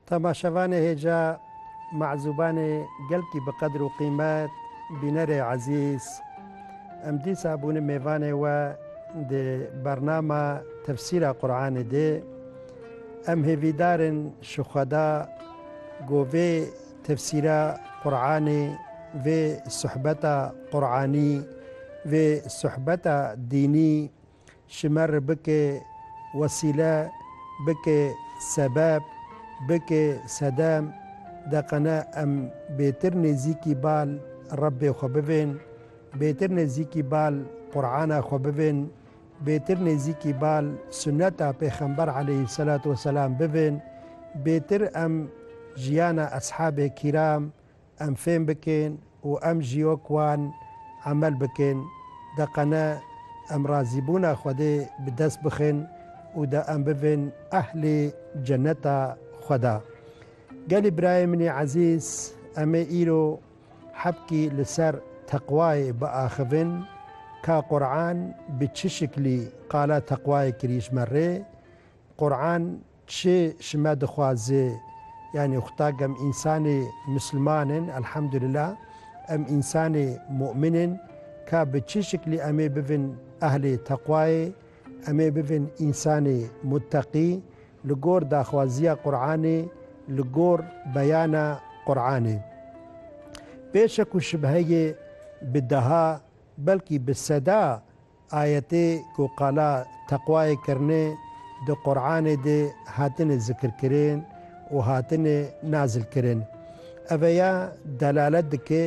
Temaşevanê hêja mezûbanê gelkî bi qedir û qîmet, bînerê ezîz, em dîsa bûne mêvanê we di bernama tefsîra Quranê de. Em hêvîdar in ji Xweda ku vê tefsîra Quranê, vê suhbeta Quranî, vê suhbeta dînî Şimer bike wesîle, bike sebeb, bike sedem, deqene em bêtir nêzîkî bal Rebbê xwe bibên, bêtir nêzîkî bal Qur'ana xwe bibên, bêtir nêzîkî bal sunneta Pêxember aleyhîsselatu weselam bibên, bêtir em jiyana eshabê kîram, Em fêm bikin û em ji yok wan emel bikin, de qene em razîbûna Xwedê bi dest bixin û de em bibin ehlê ceneta Xweda. Gelî birayê min ê ezîz, em ê îro hebkî li ser teqwayê biaxivin, ka Quran bi çi şiklî qala teqwayê kirî ji me rê. Quran Çi ji me dixwaze? Yanî xuda ke em însanê misliman in, elhamdulillah, em însanê mu'min in, ka bi çi şiklî em ê bibin ehlê teqwayê, em ê bibin însanê mutteqî, li gor daxwaziya Quranê, li gor beyana Quranê. Bê şek û şibheyê bi deha, belkî bi seda Ayetê ku qala teqwayê kirine di Quranê de hatine zikirkirin û hatine nazilkirin. Ev ya delalet dike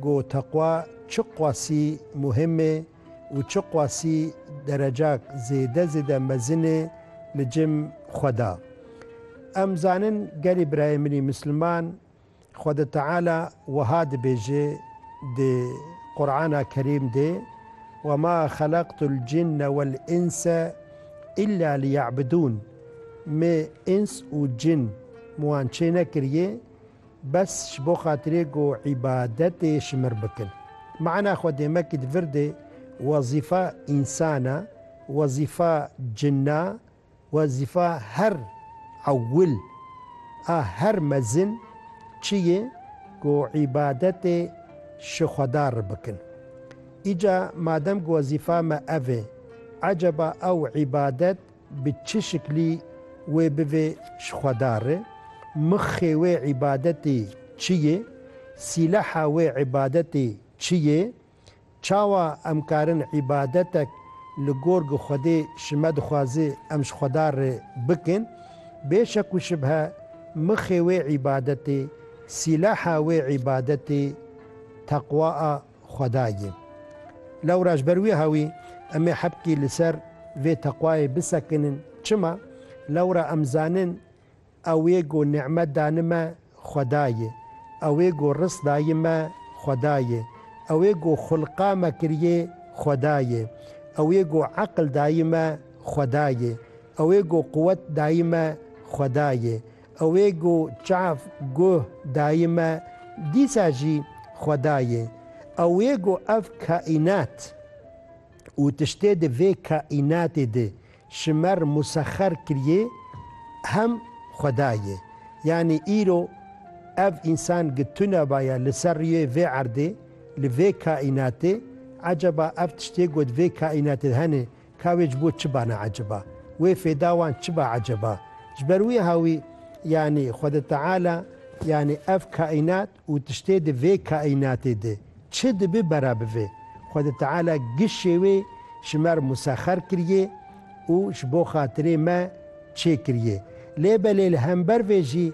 ku teqwa çi qasî muhim e û çi qasî derecak zêde zêde mezin e li cem xwe de. Em zanin gelê birayê min ê misliman, Xweda Teala wiha dibêje di Qur'ana Kerîm de, Wema xelaqtul cinne wel înse îlla liyebidûn, Me îns û cin min wan çênekiriye bes ji bo xatirê ku îbadetê ji min bikin. Mana xwe dê mekî di vir de wezîfa însan a, wezîfa cin a. Wezîfa her ewil a her mezin çi yê ku îbadetê ji Xweda re bikin. Îca madem ku wezîfa me ev ê, eceba ew îbadet bi çi şiklî wê bivê ji Xweda re? Mixê wê îbadetê çi yê? Sîleha wê îbadetê çi yê? Çawa em karin îbadetek li gor gi Xwedê ji me dixwaze em ji Xweda re bikin? Bê şek û şibhe mixê wê îbadetê, sîlaha wê îbadetê teqwa a Xweda ye. Lewra ji ber wiha wî em ê hepkî li ser vê teqwayê bisekinin. Çima? Lewra em zanin Ew ê ku nîmet dani me Xweda ye. Ew ê ku risk dayî me Xweda ye. Ew ê ku xulqa me kiriyê Xweda ye. Ew ê ku eqil dayî me Xweda ye. Ew ê ku quwet dayî me Xweda ye. Ew ê ku çav, guh, dayî me dîsa jî Xweda ye. Ew ê ku ev kaînat û tiştê di vê kaînatê de Şimer musexer kiriyê hem xweda yê. Yanî îro ev însan gi tune baye li ser riyê vê erdê, li vê kaînatê. Eceba ev tiştê ku di vê kaînatê de hene, ka wê ji bo çi ba ne eceba? Wê fêda wan çi ba eceba? Ji ber wiha wî yanî Xweda Teala yanî ev kaînat Û tiştê di vê kaînatê de çi dibe bera bi vê, Xwedê Teala gişê wê ji me re musexer kiriye û ji bo xatirê me çêkiriye. Lê belê li hember vê jî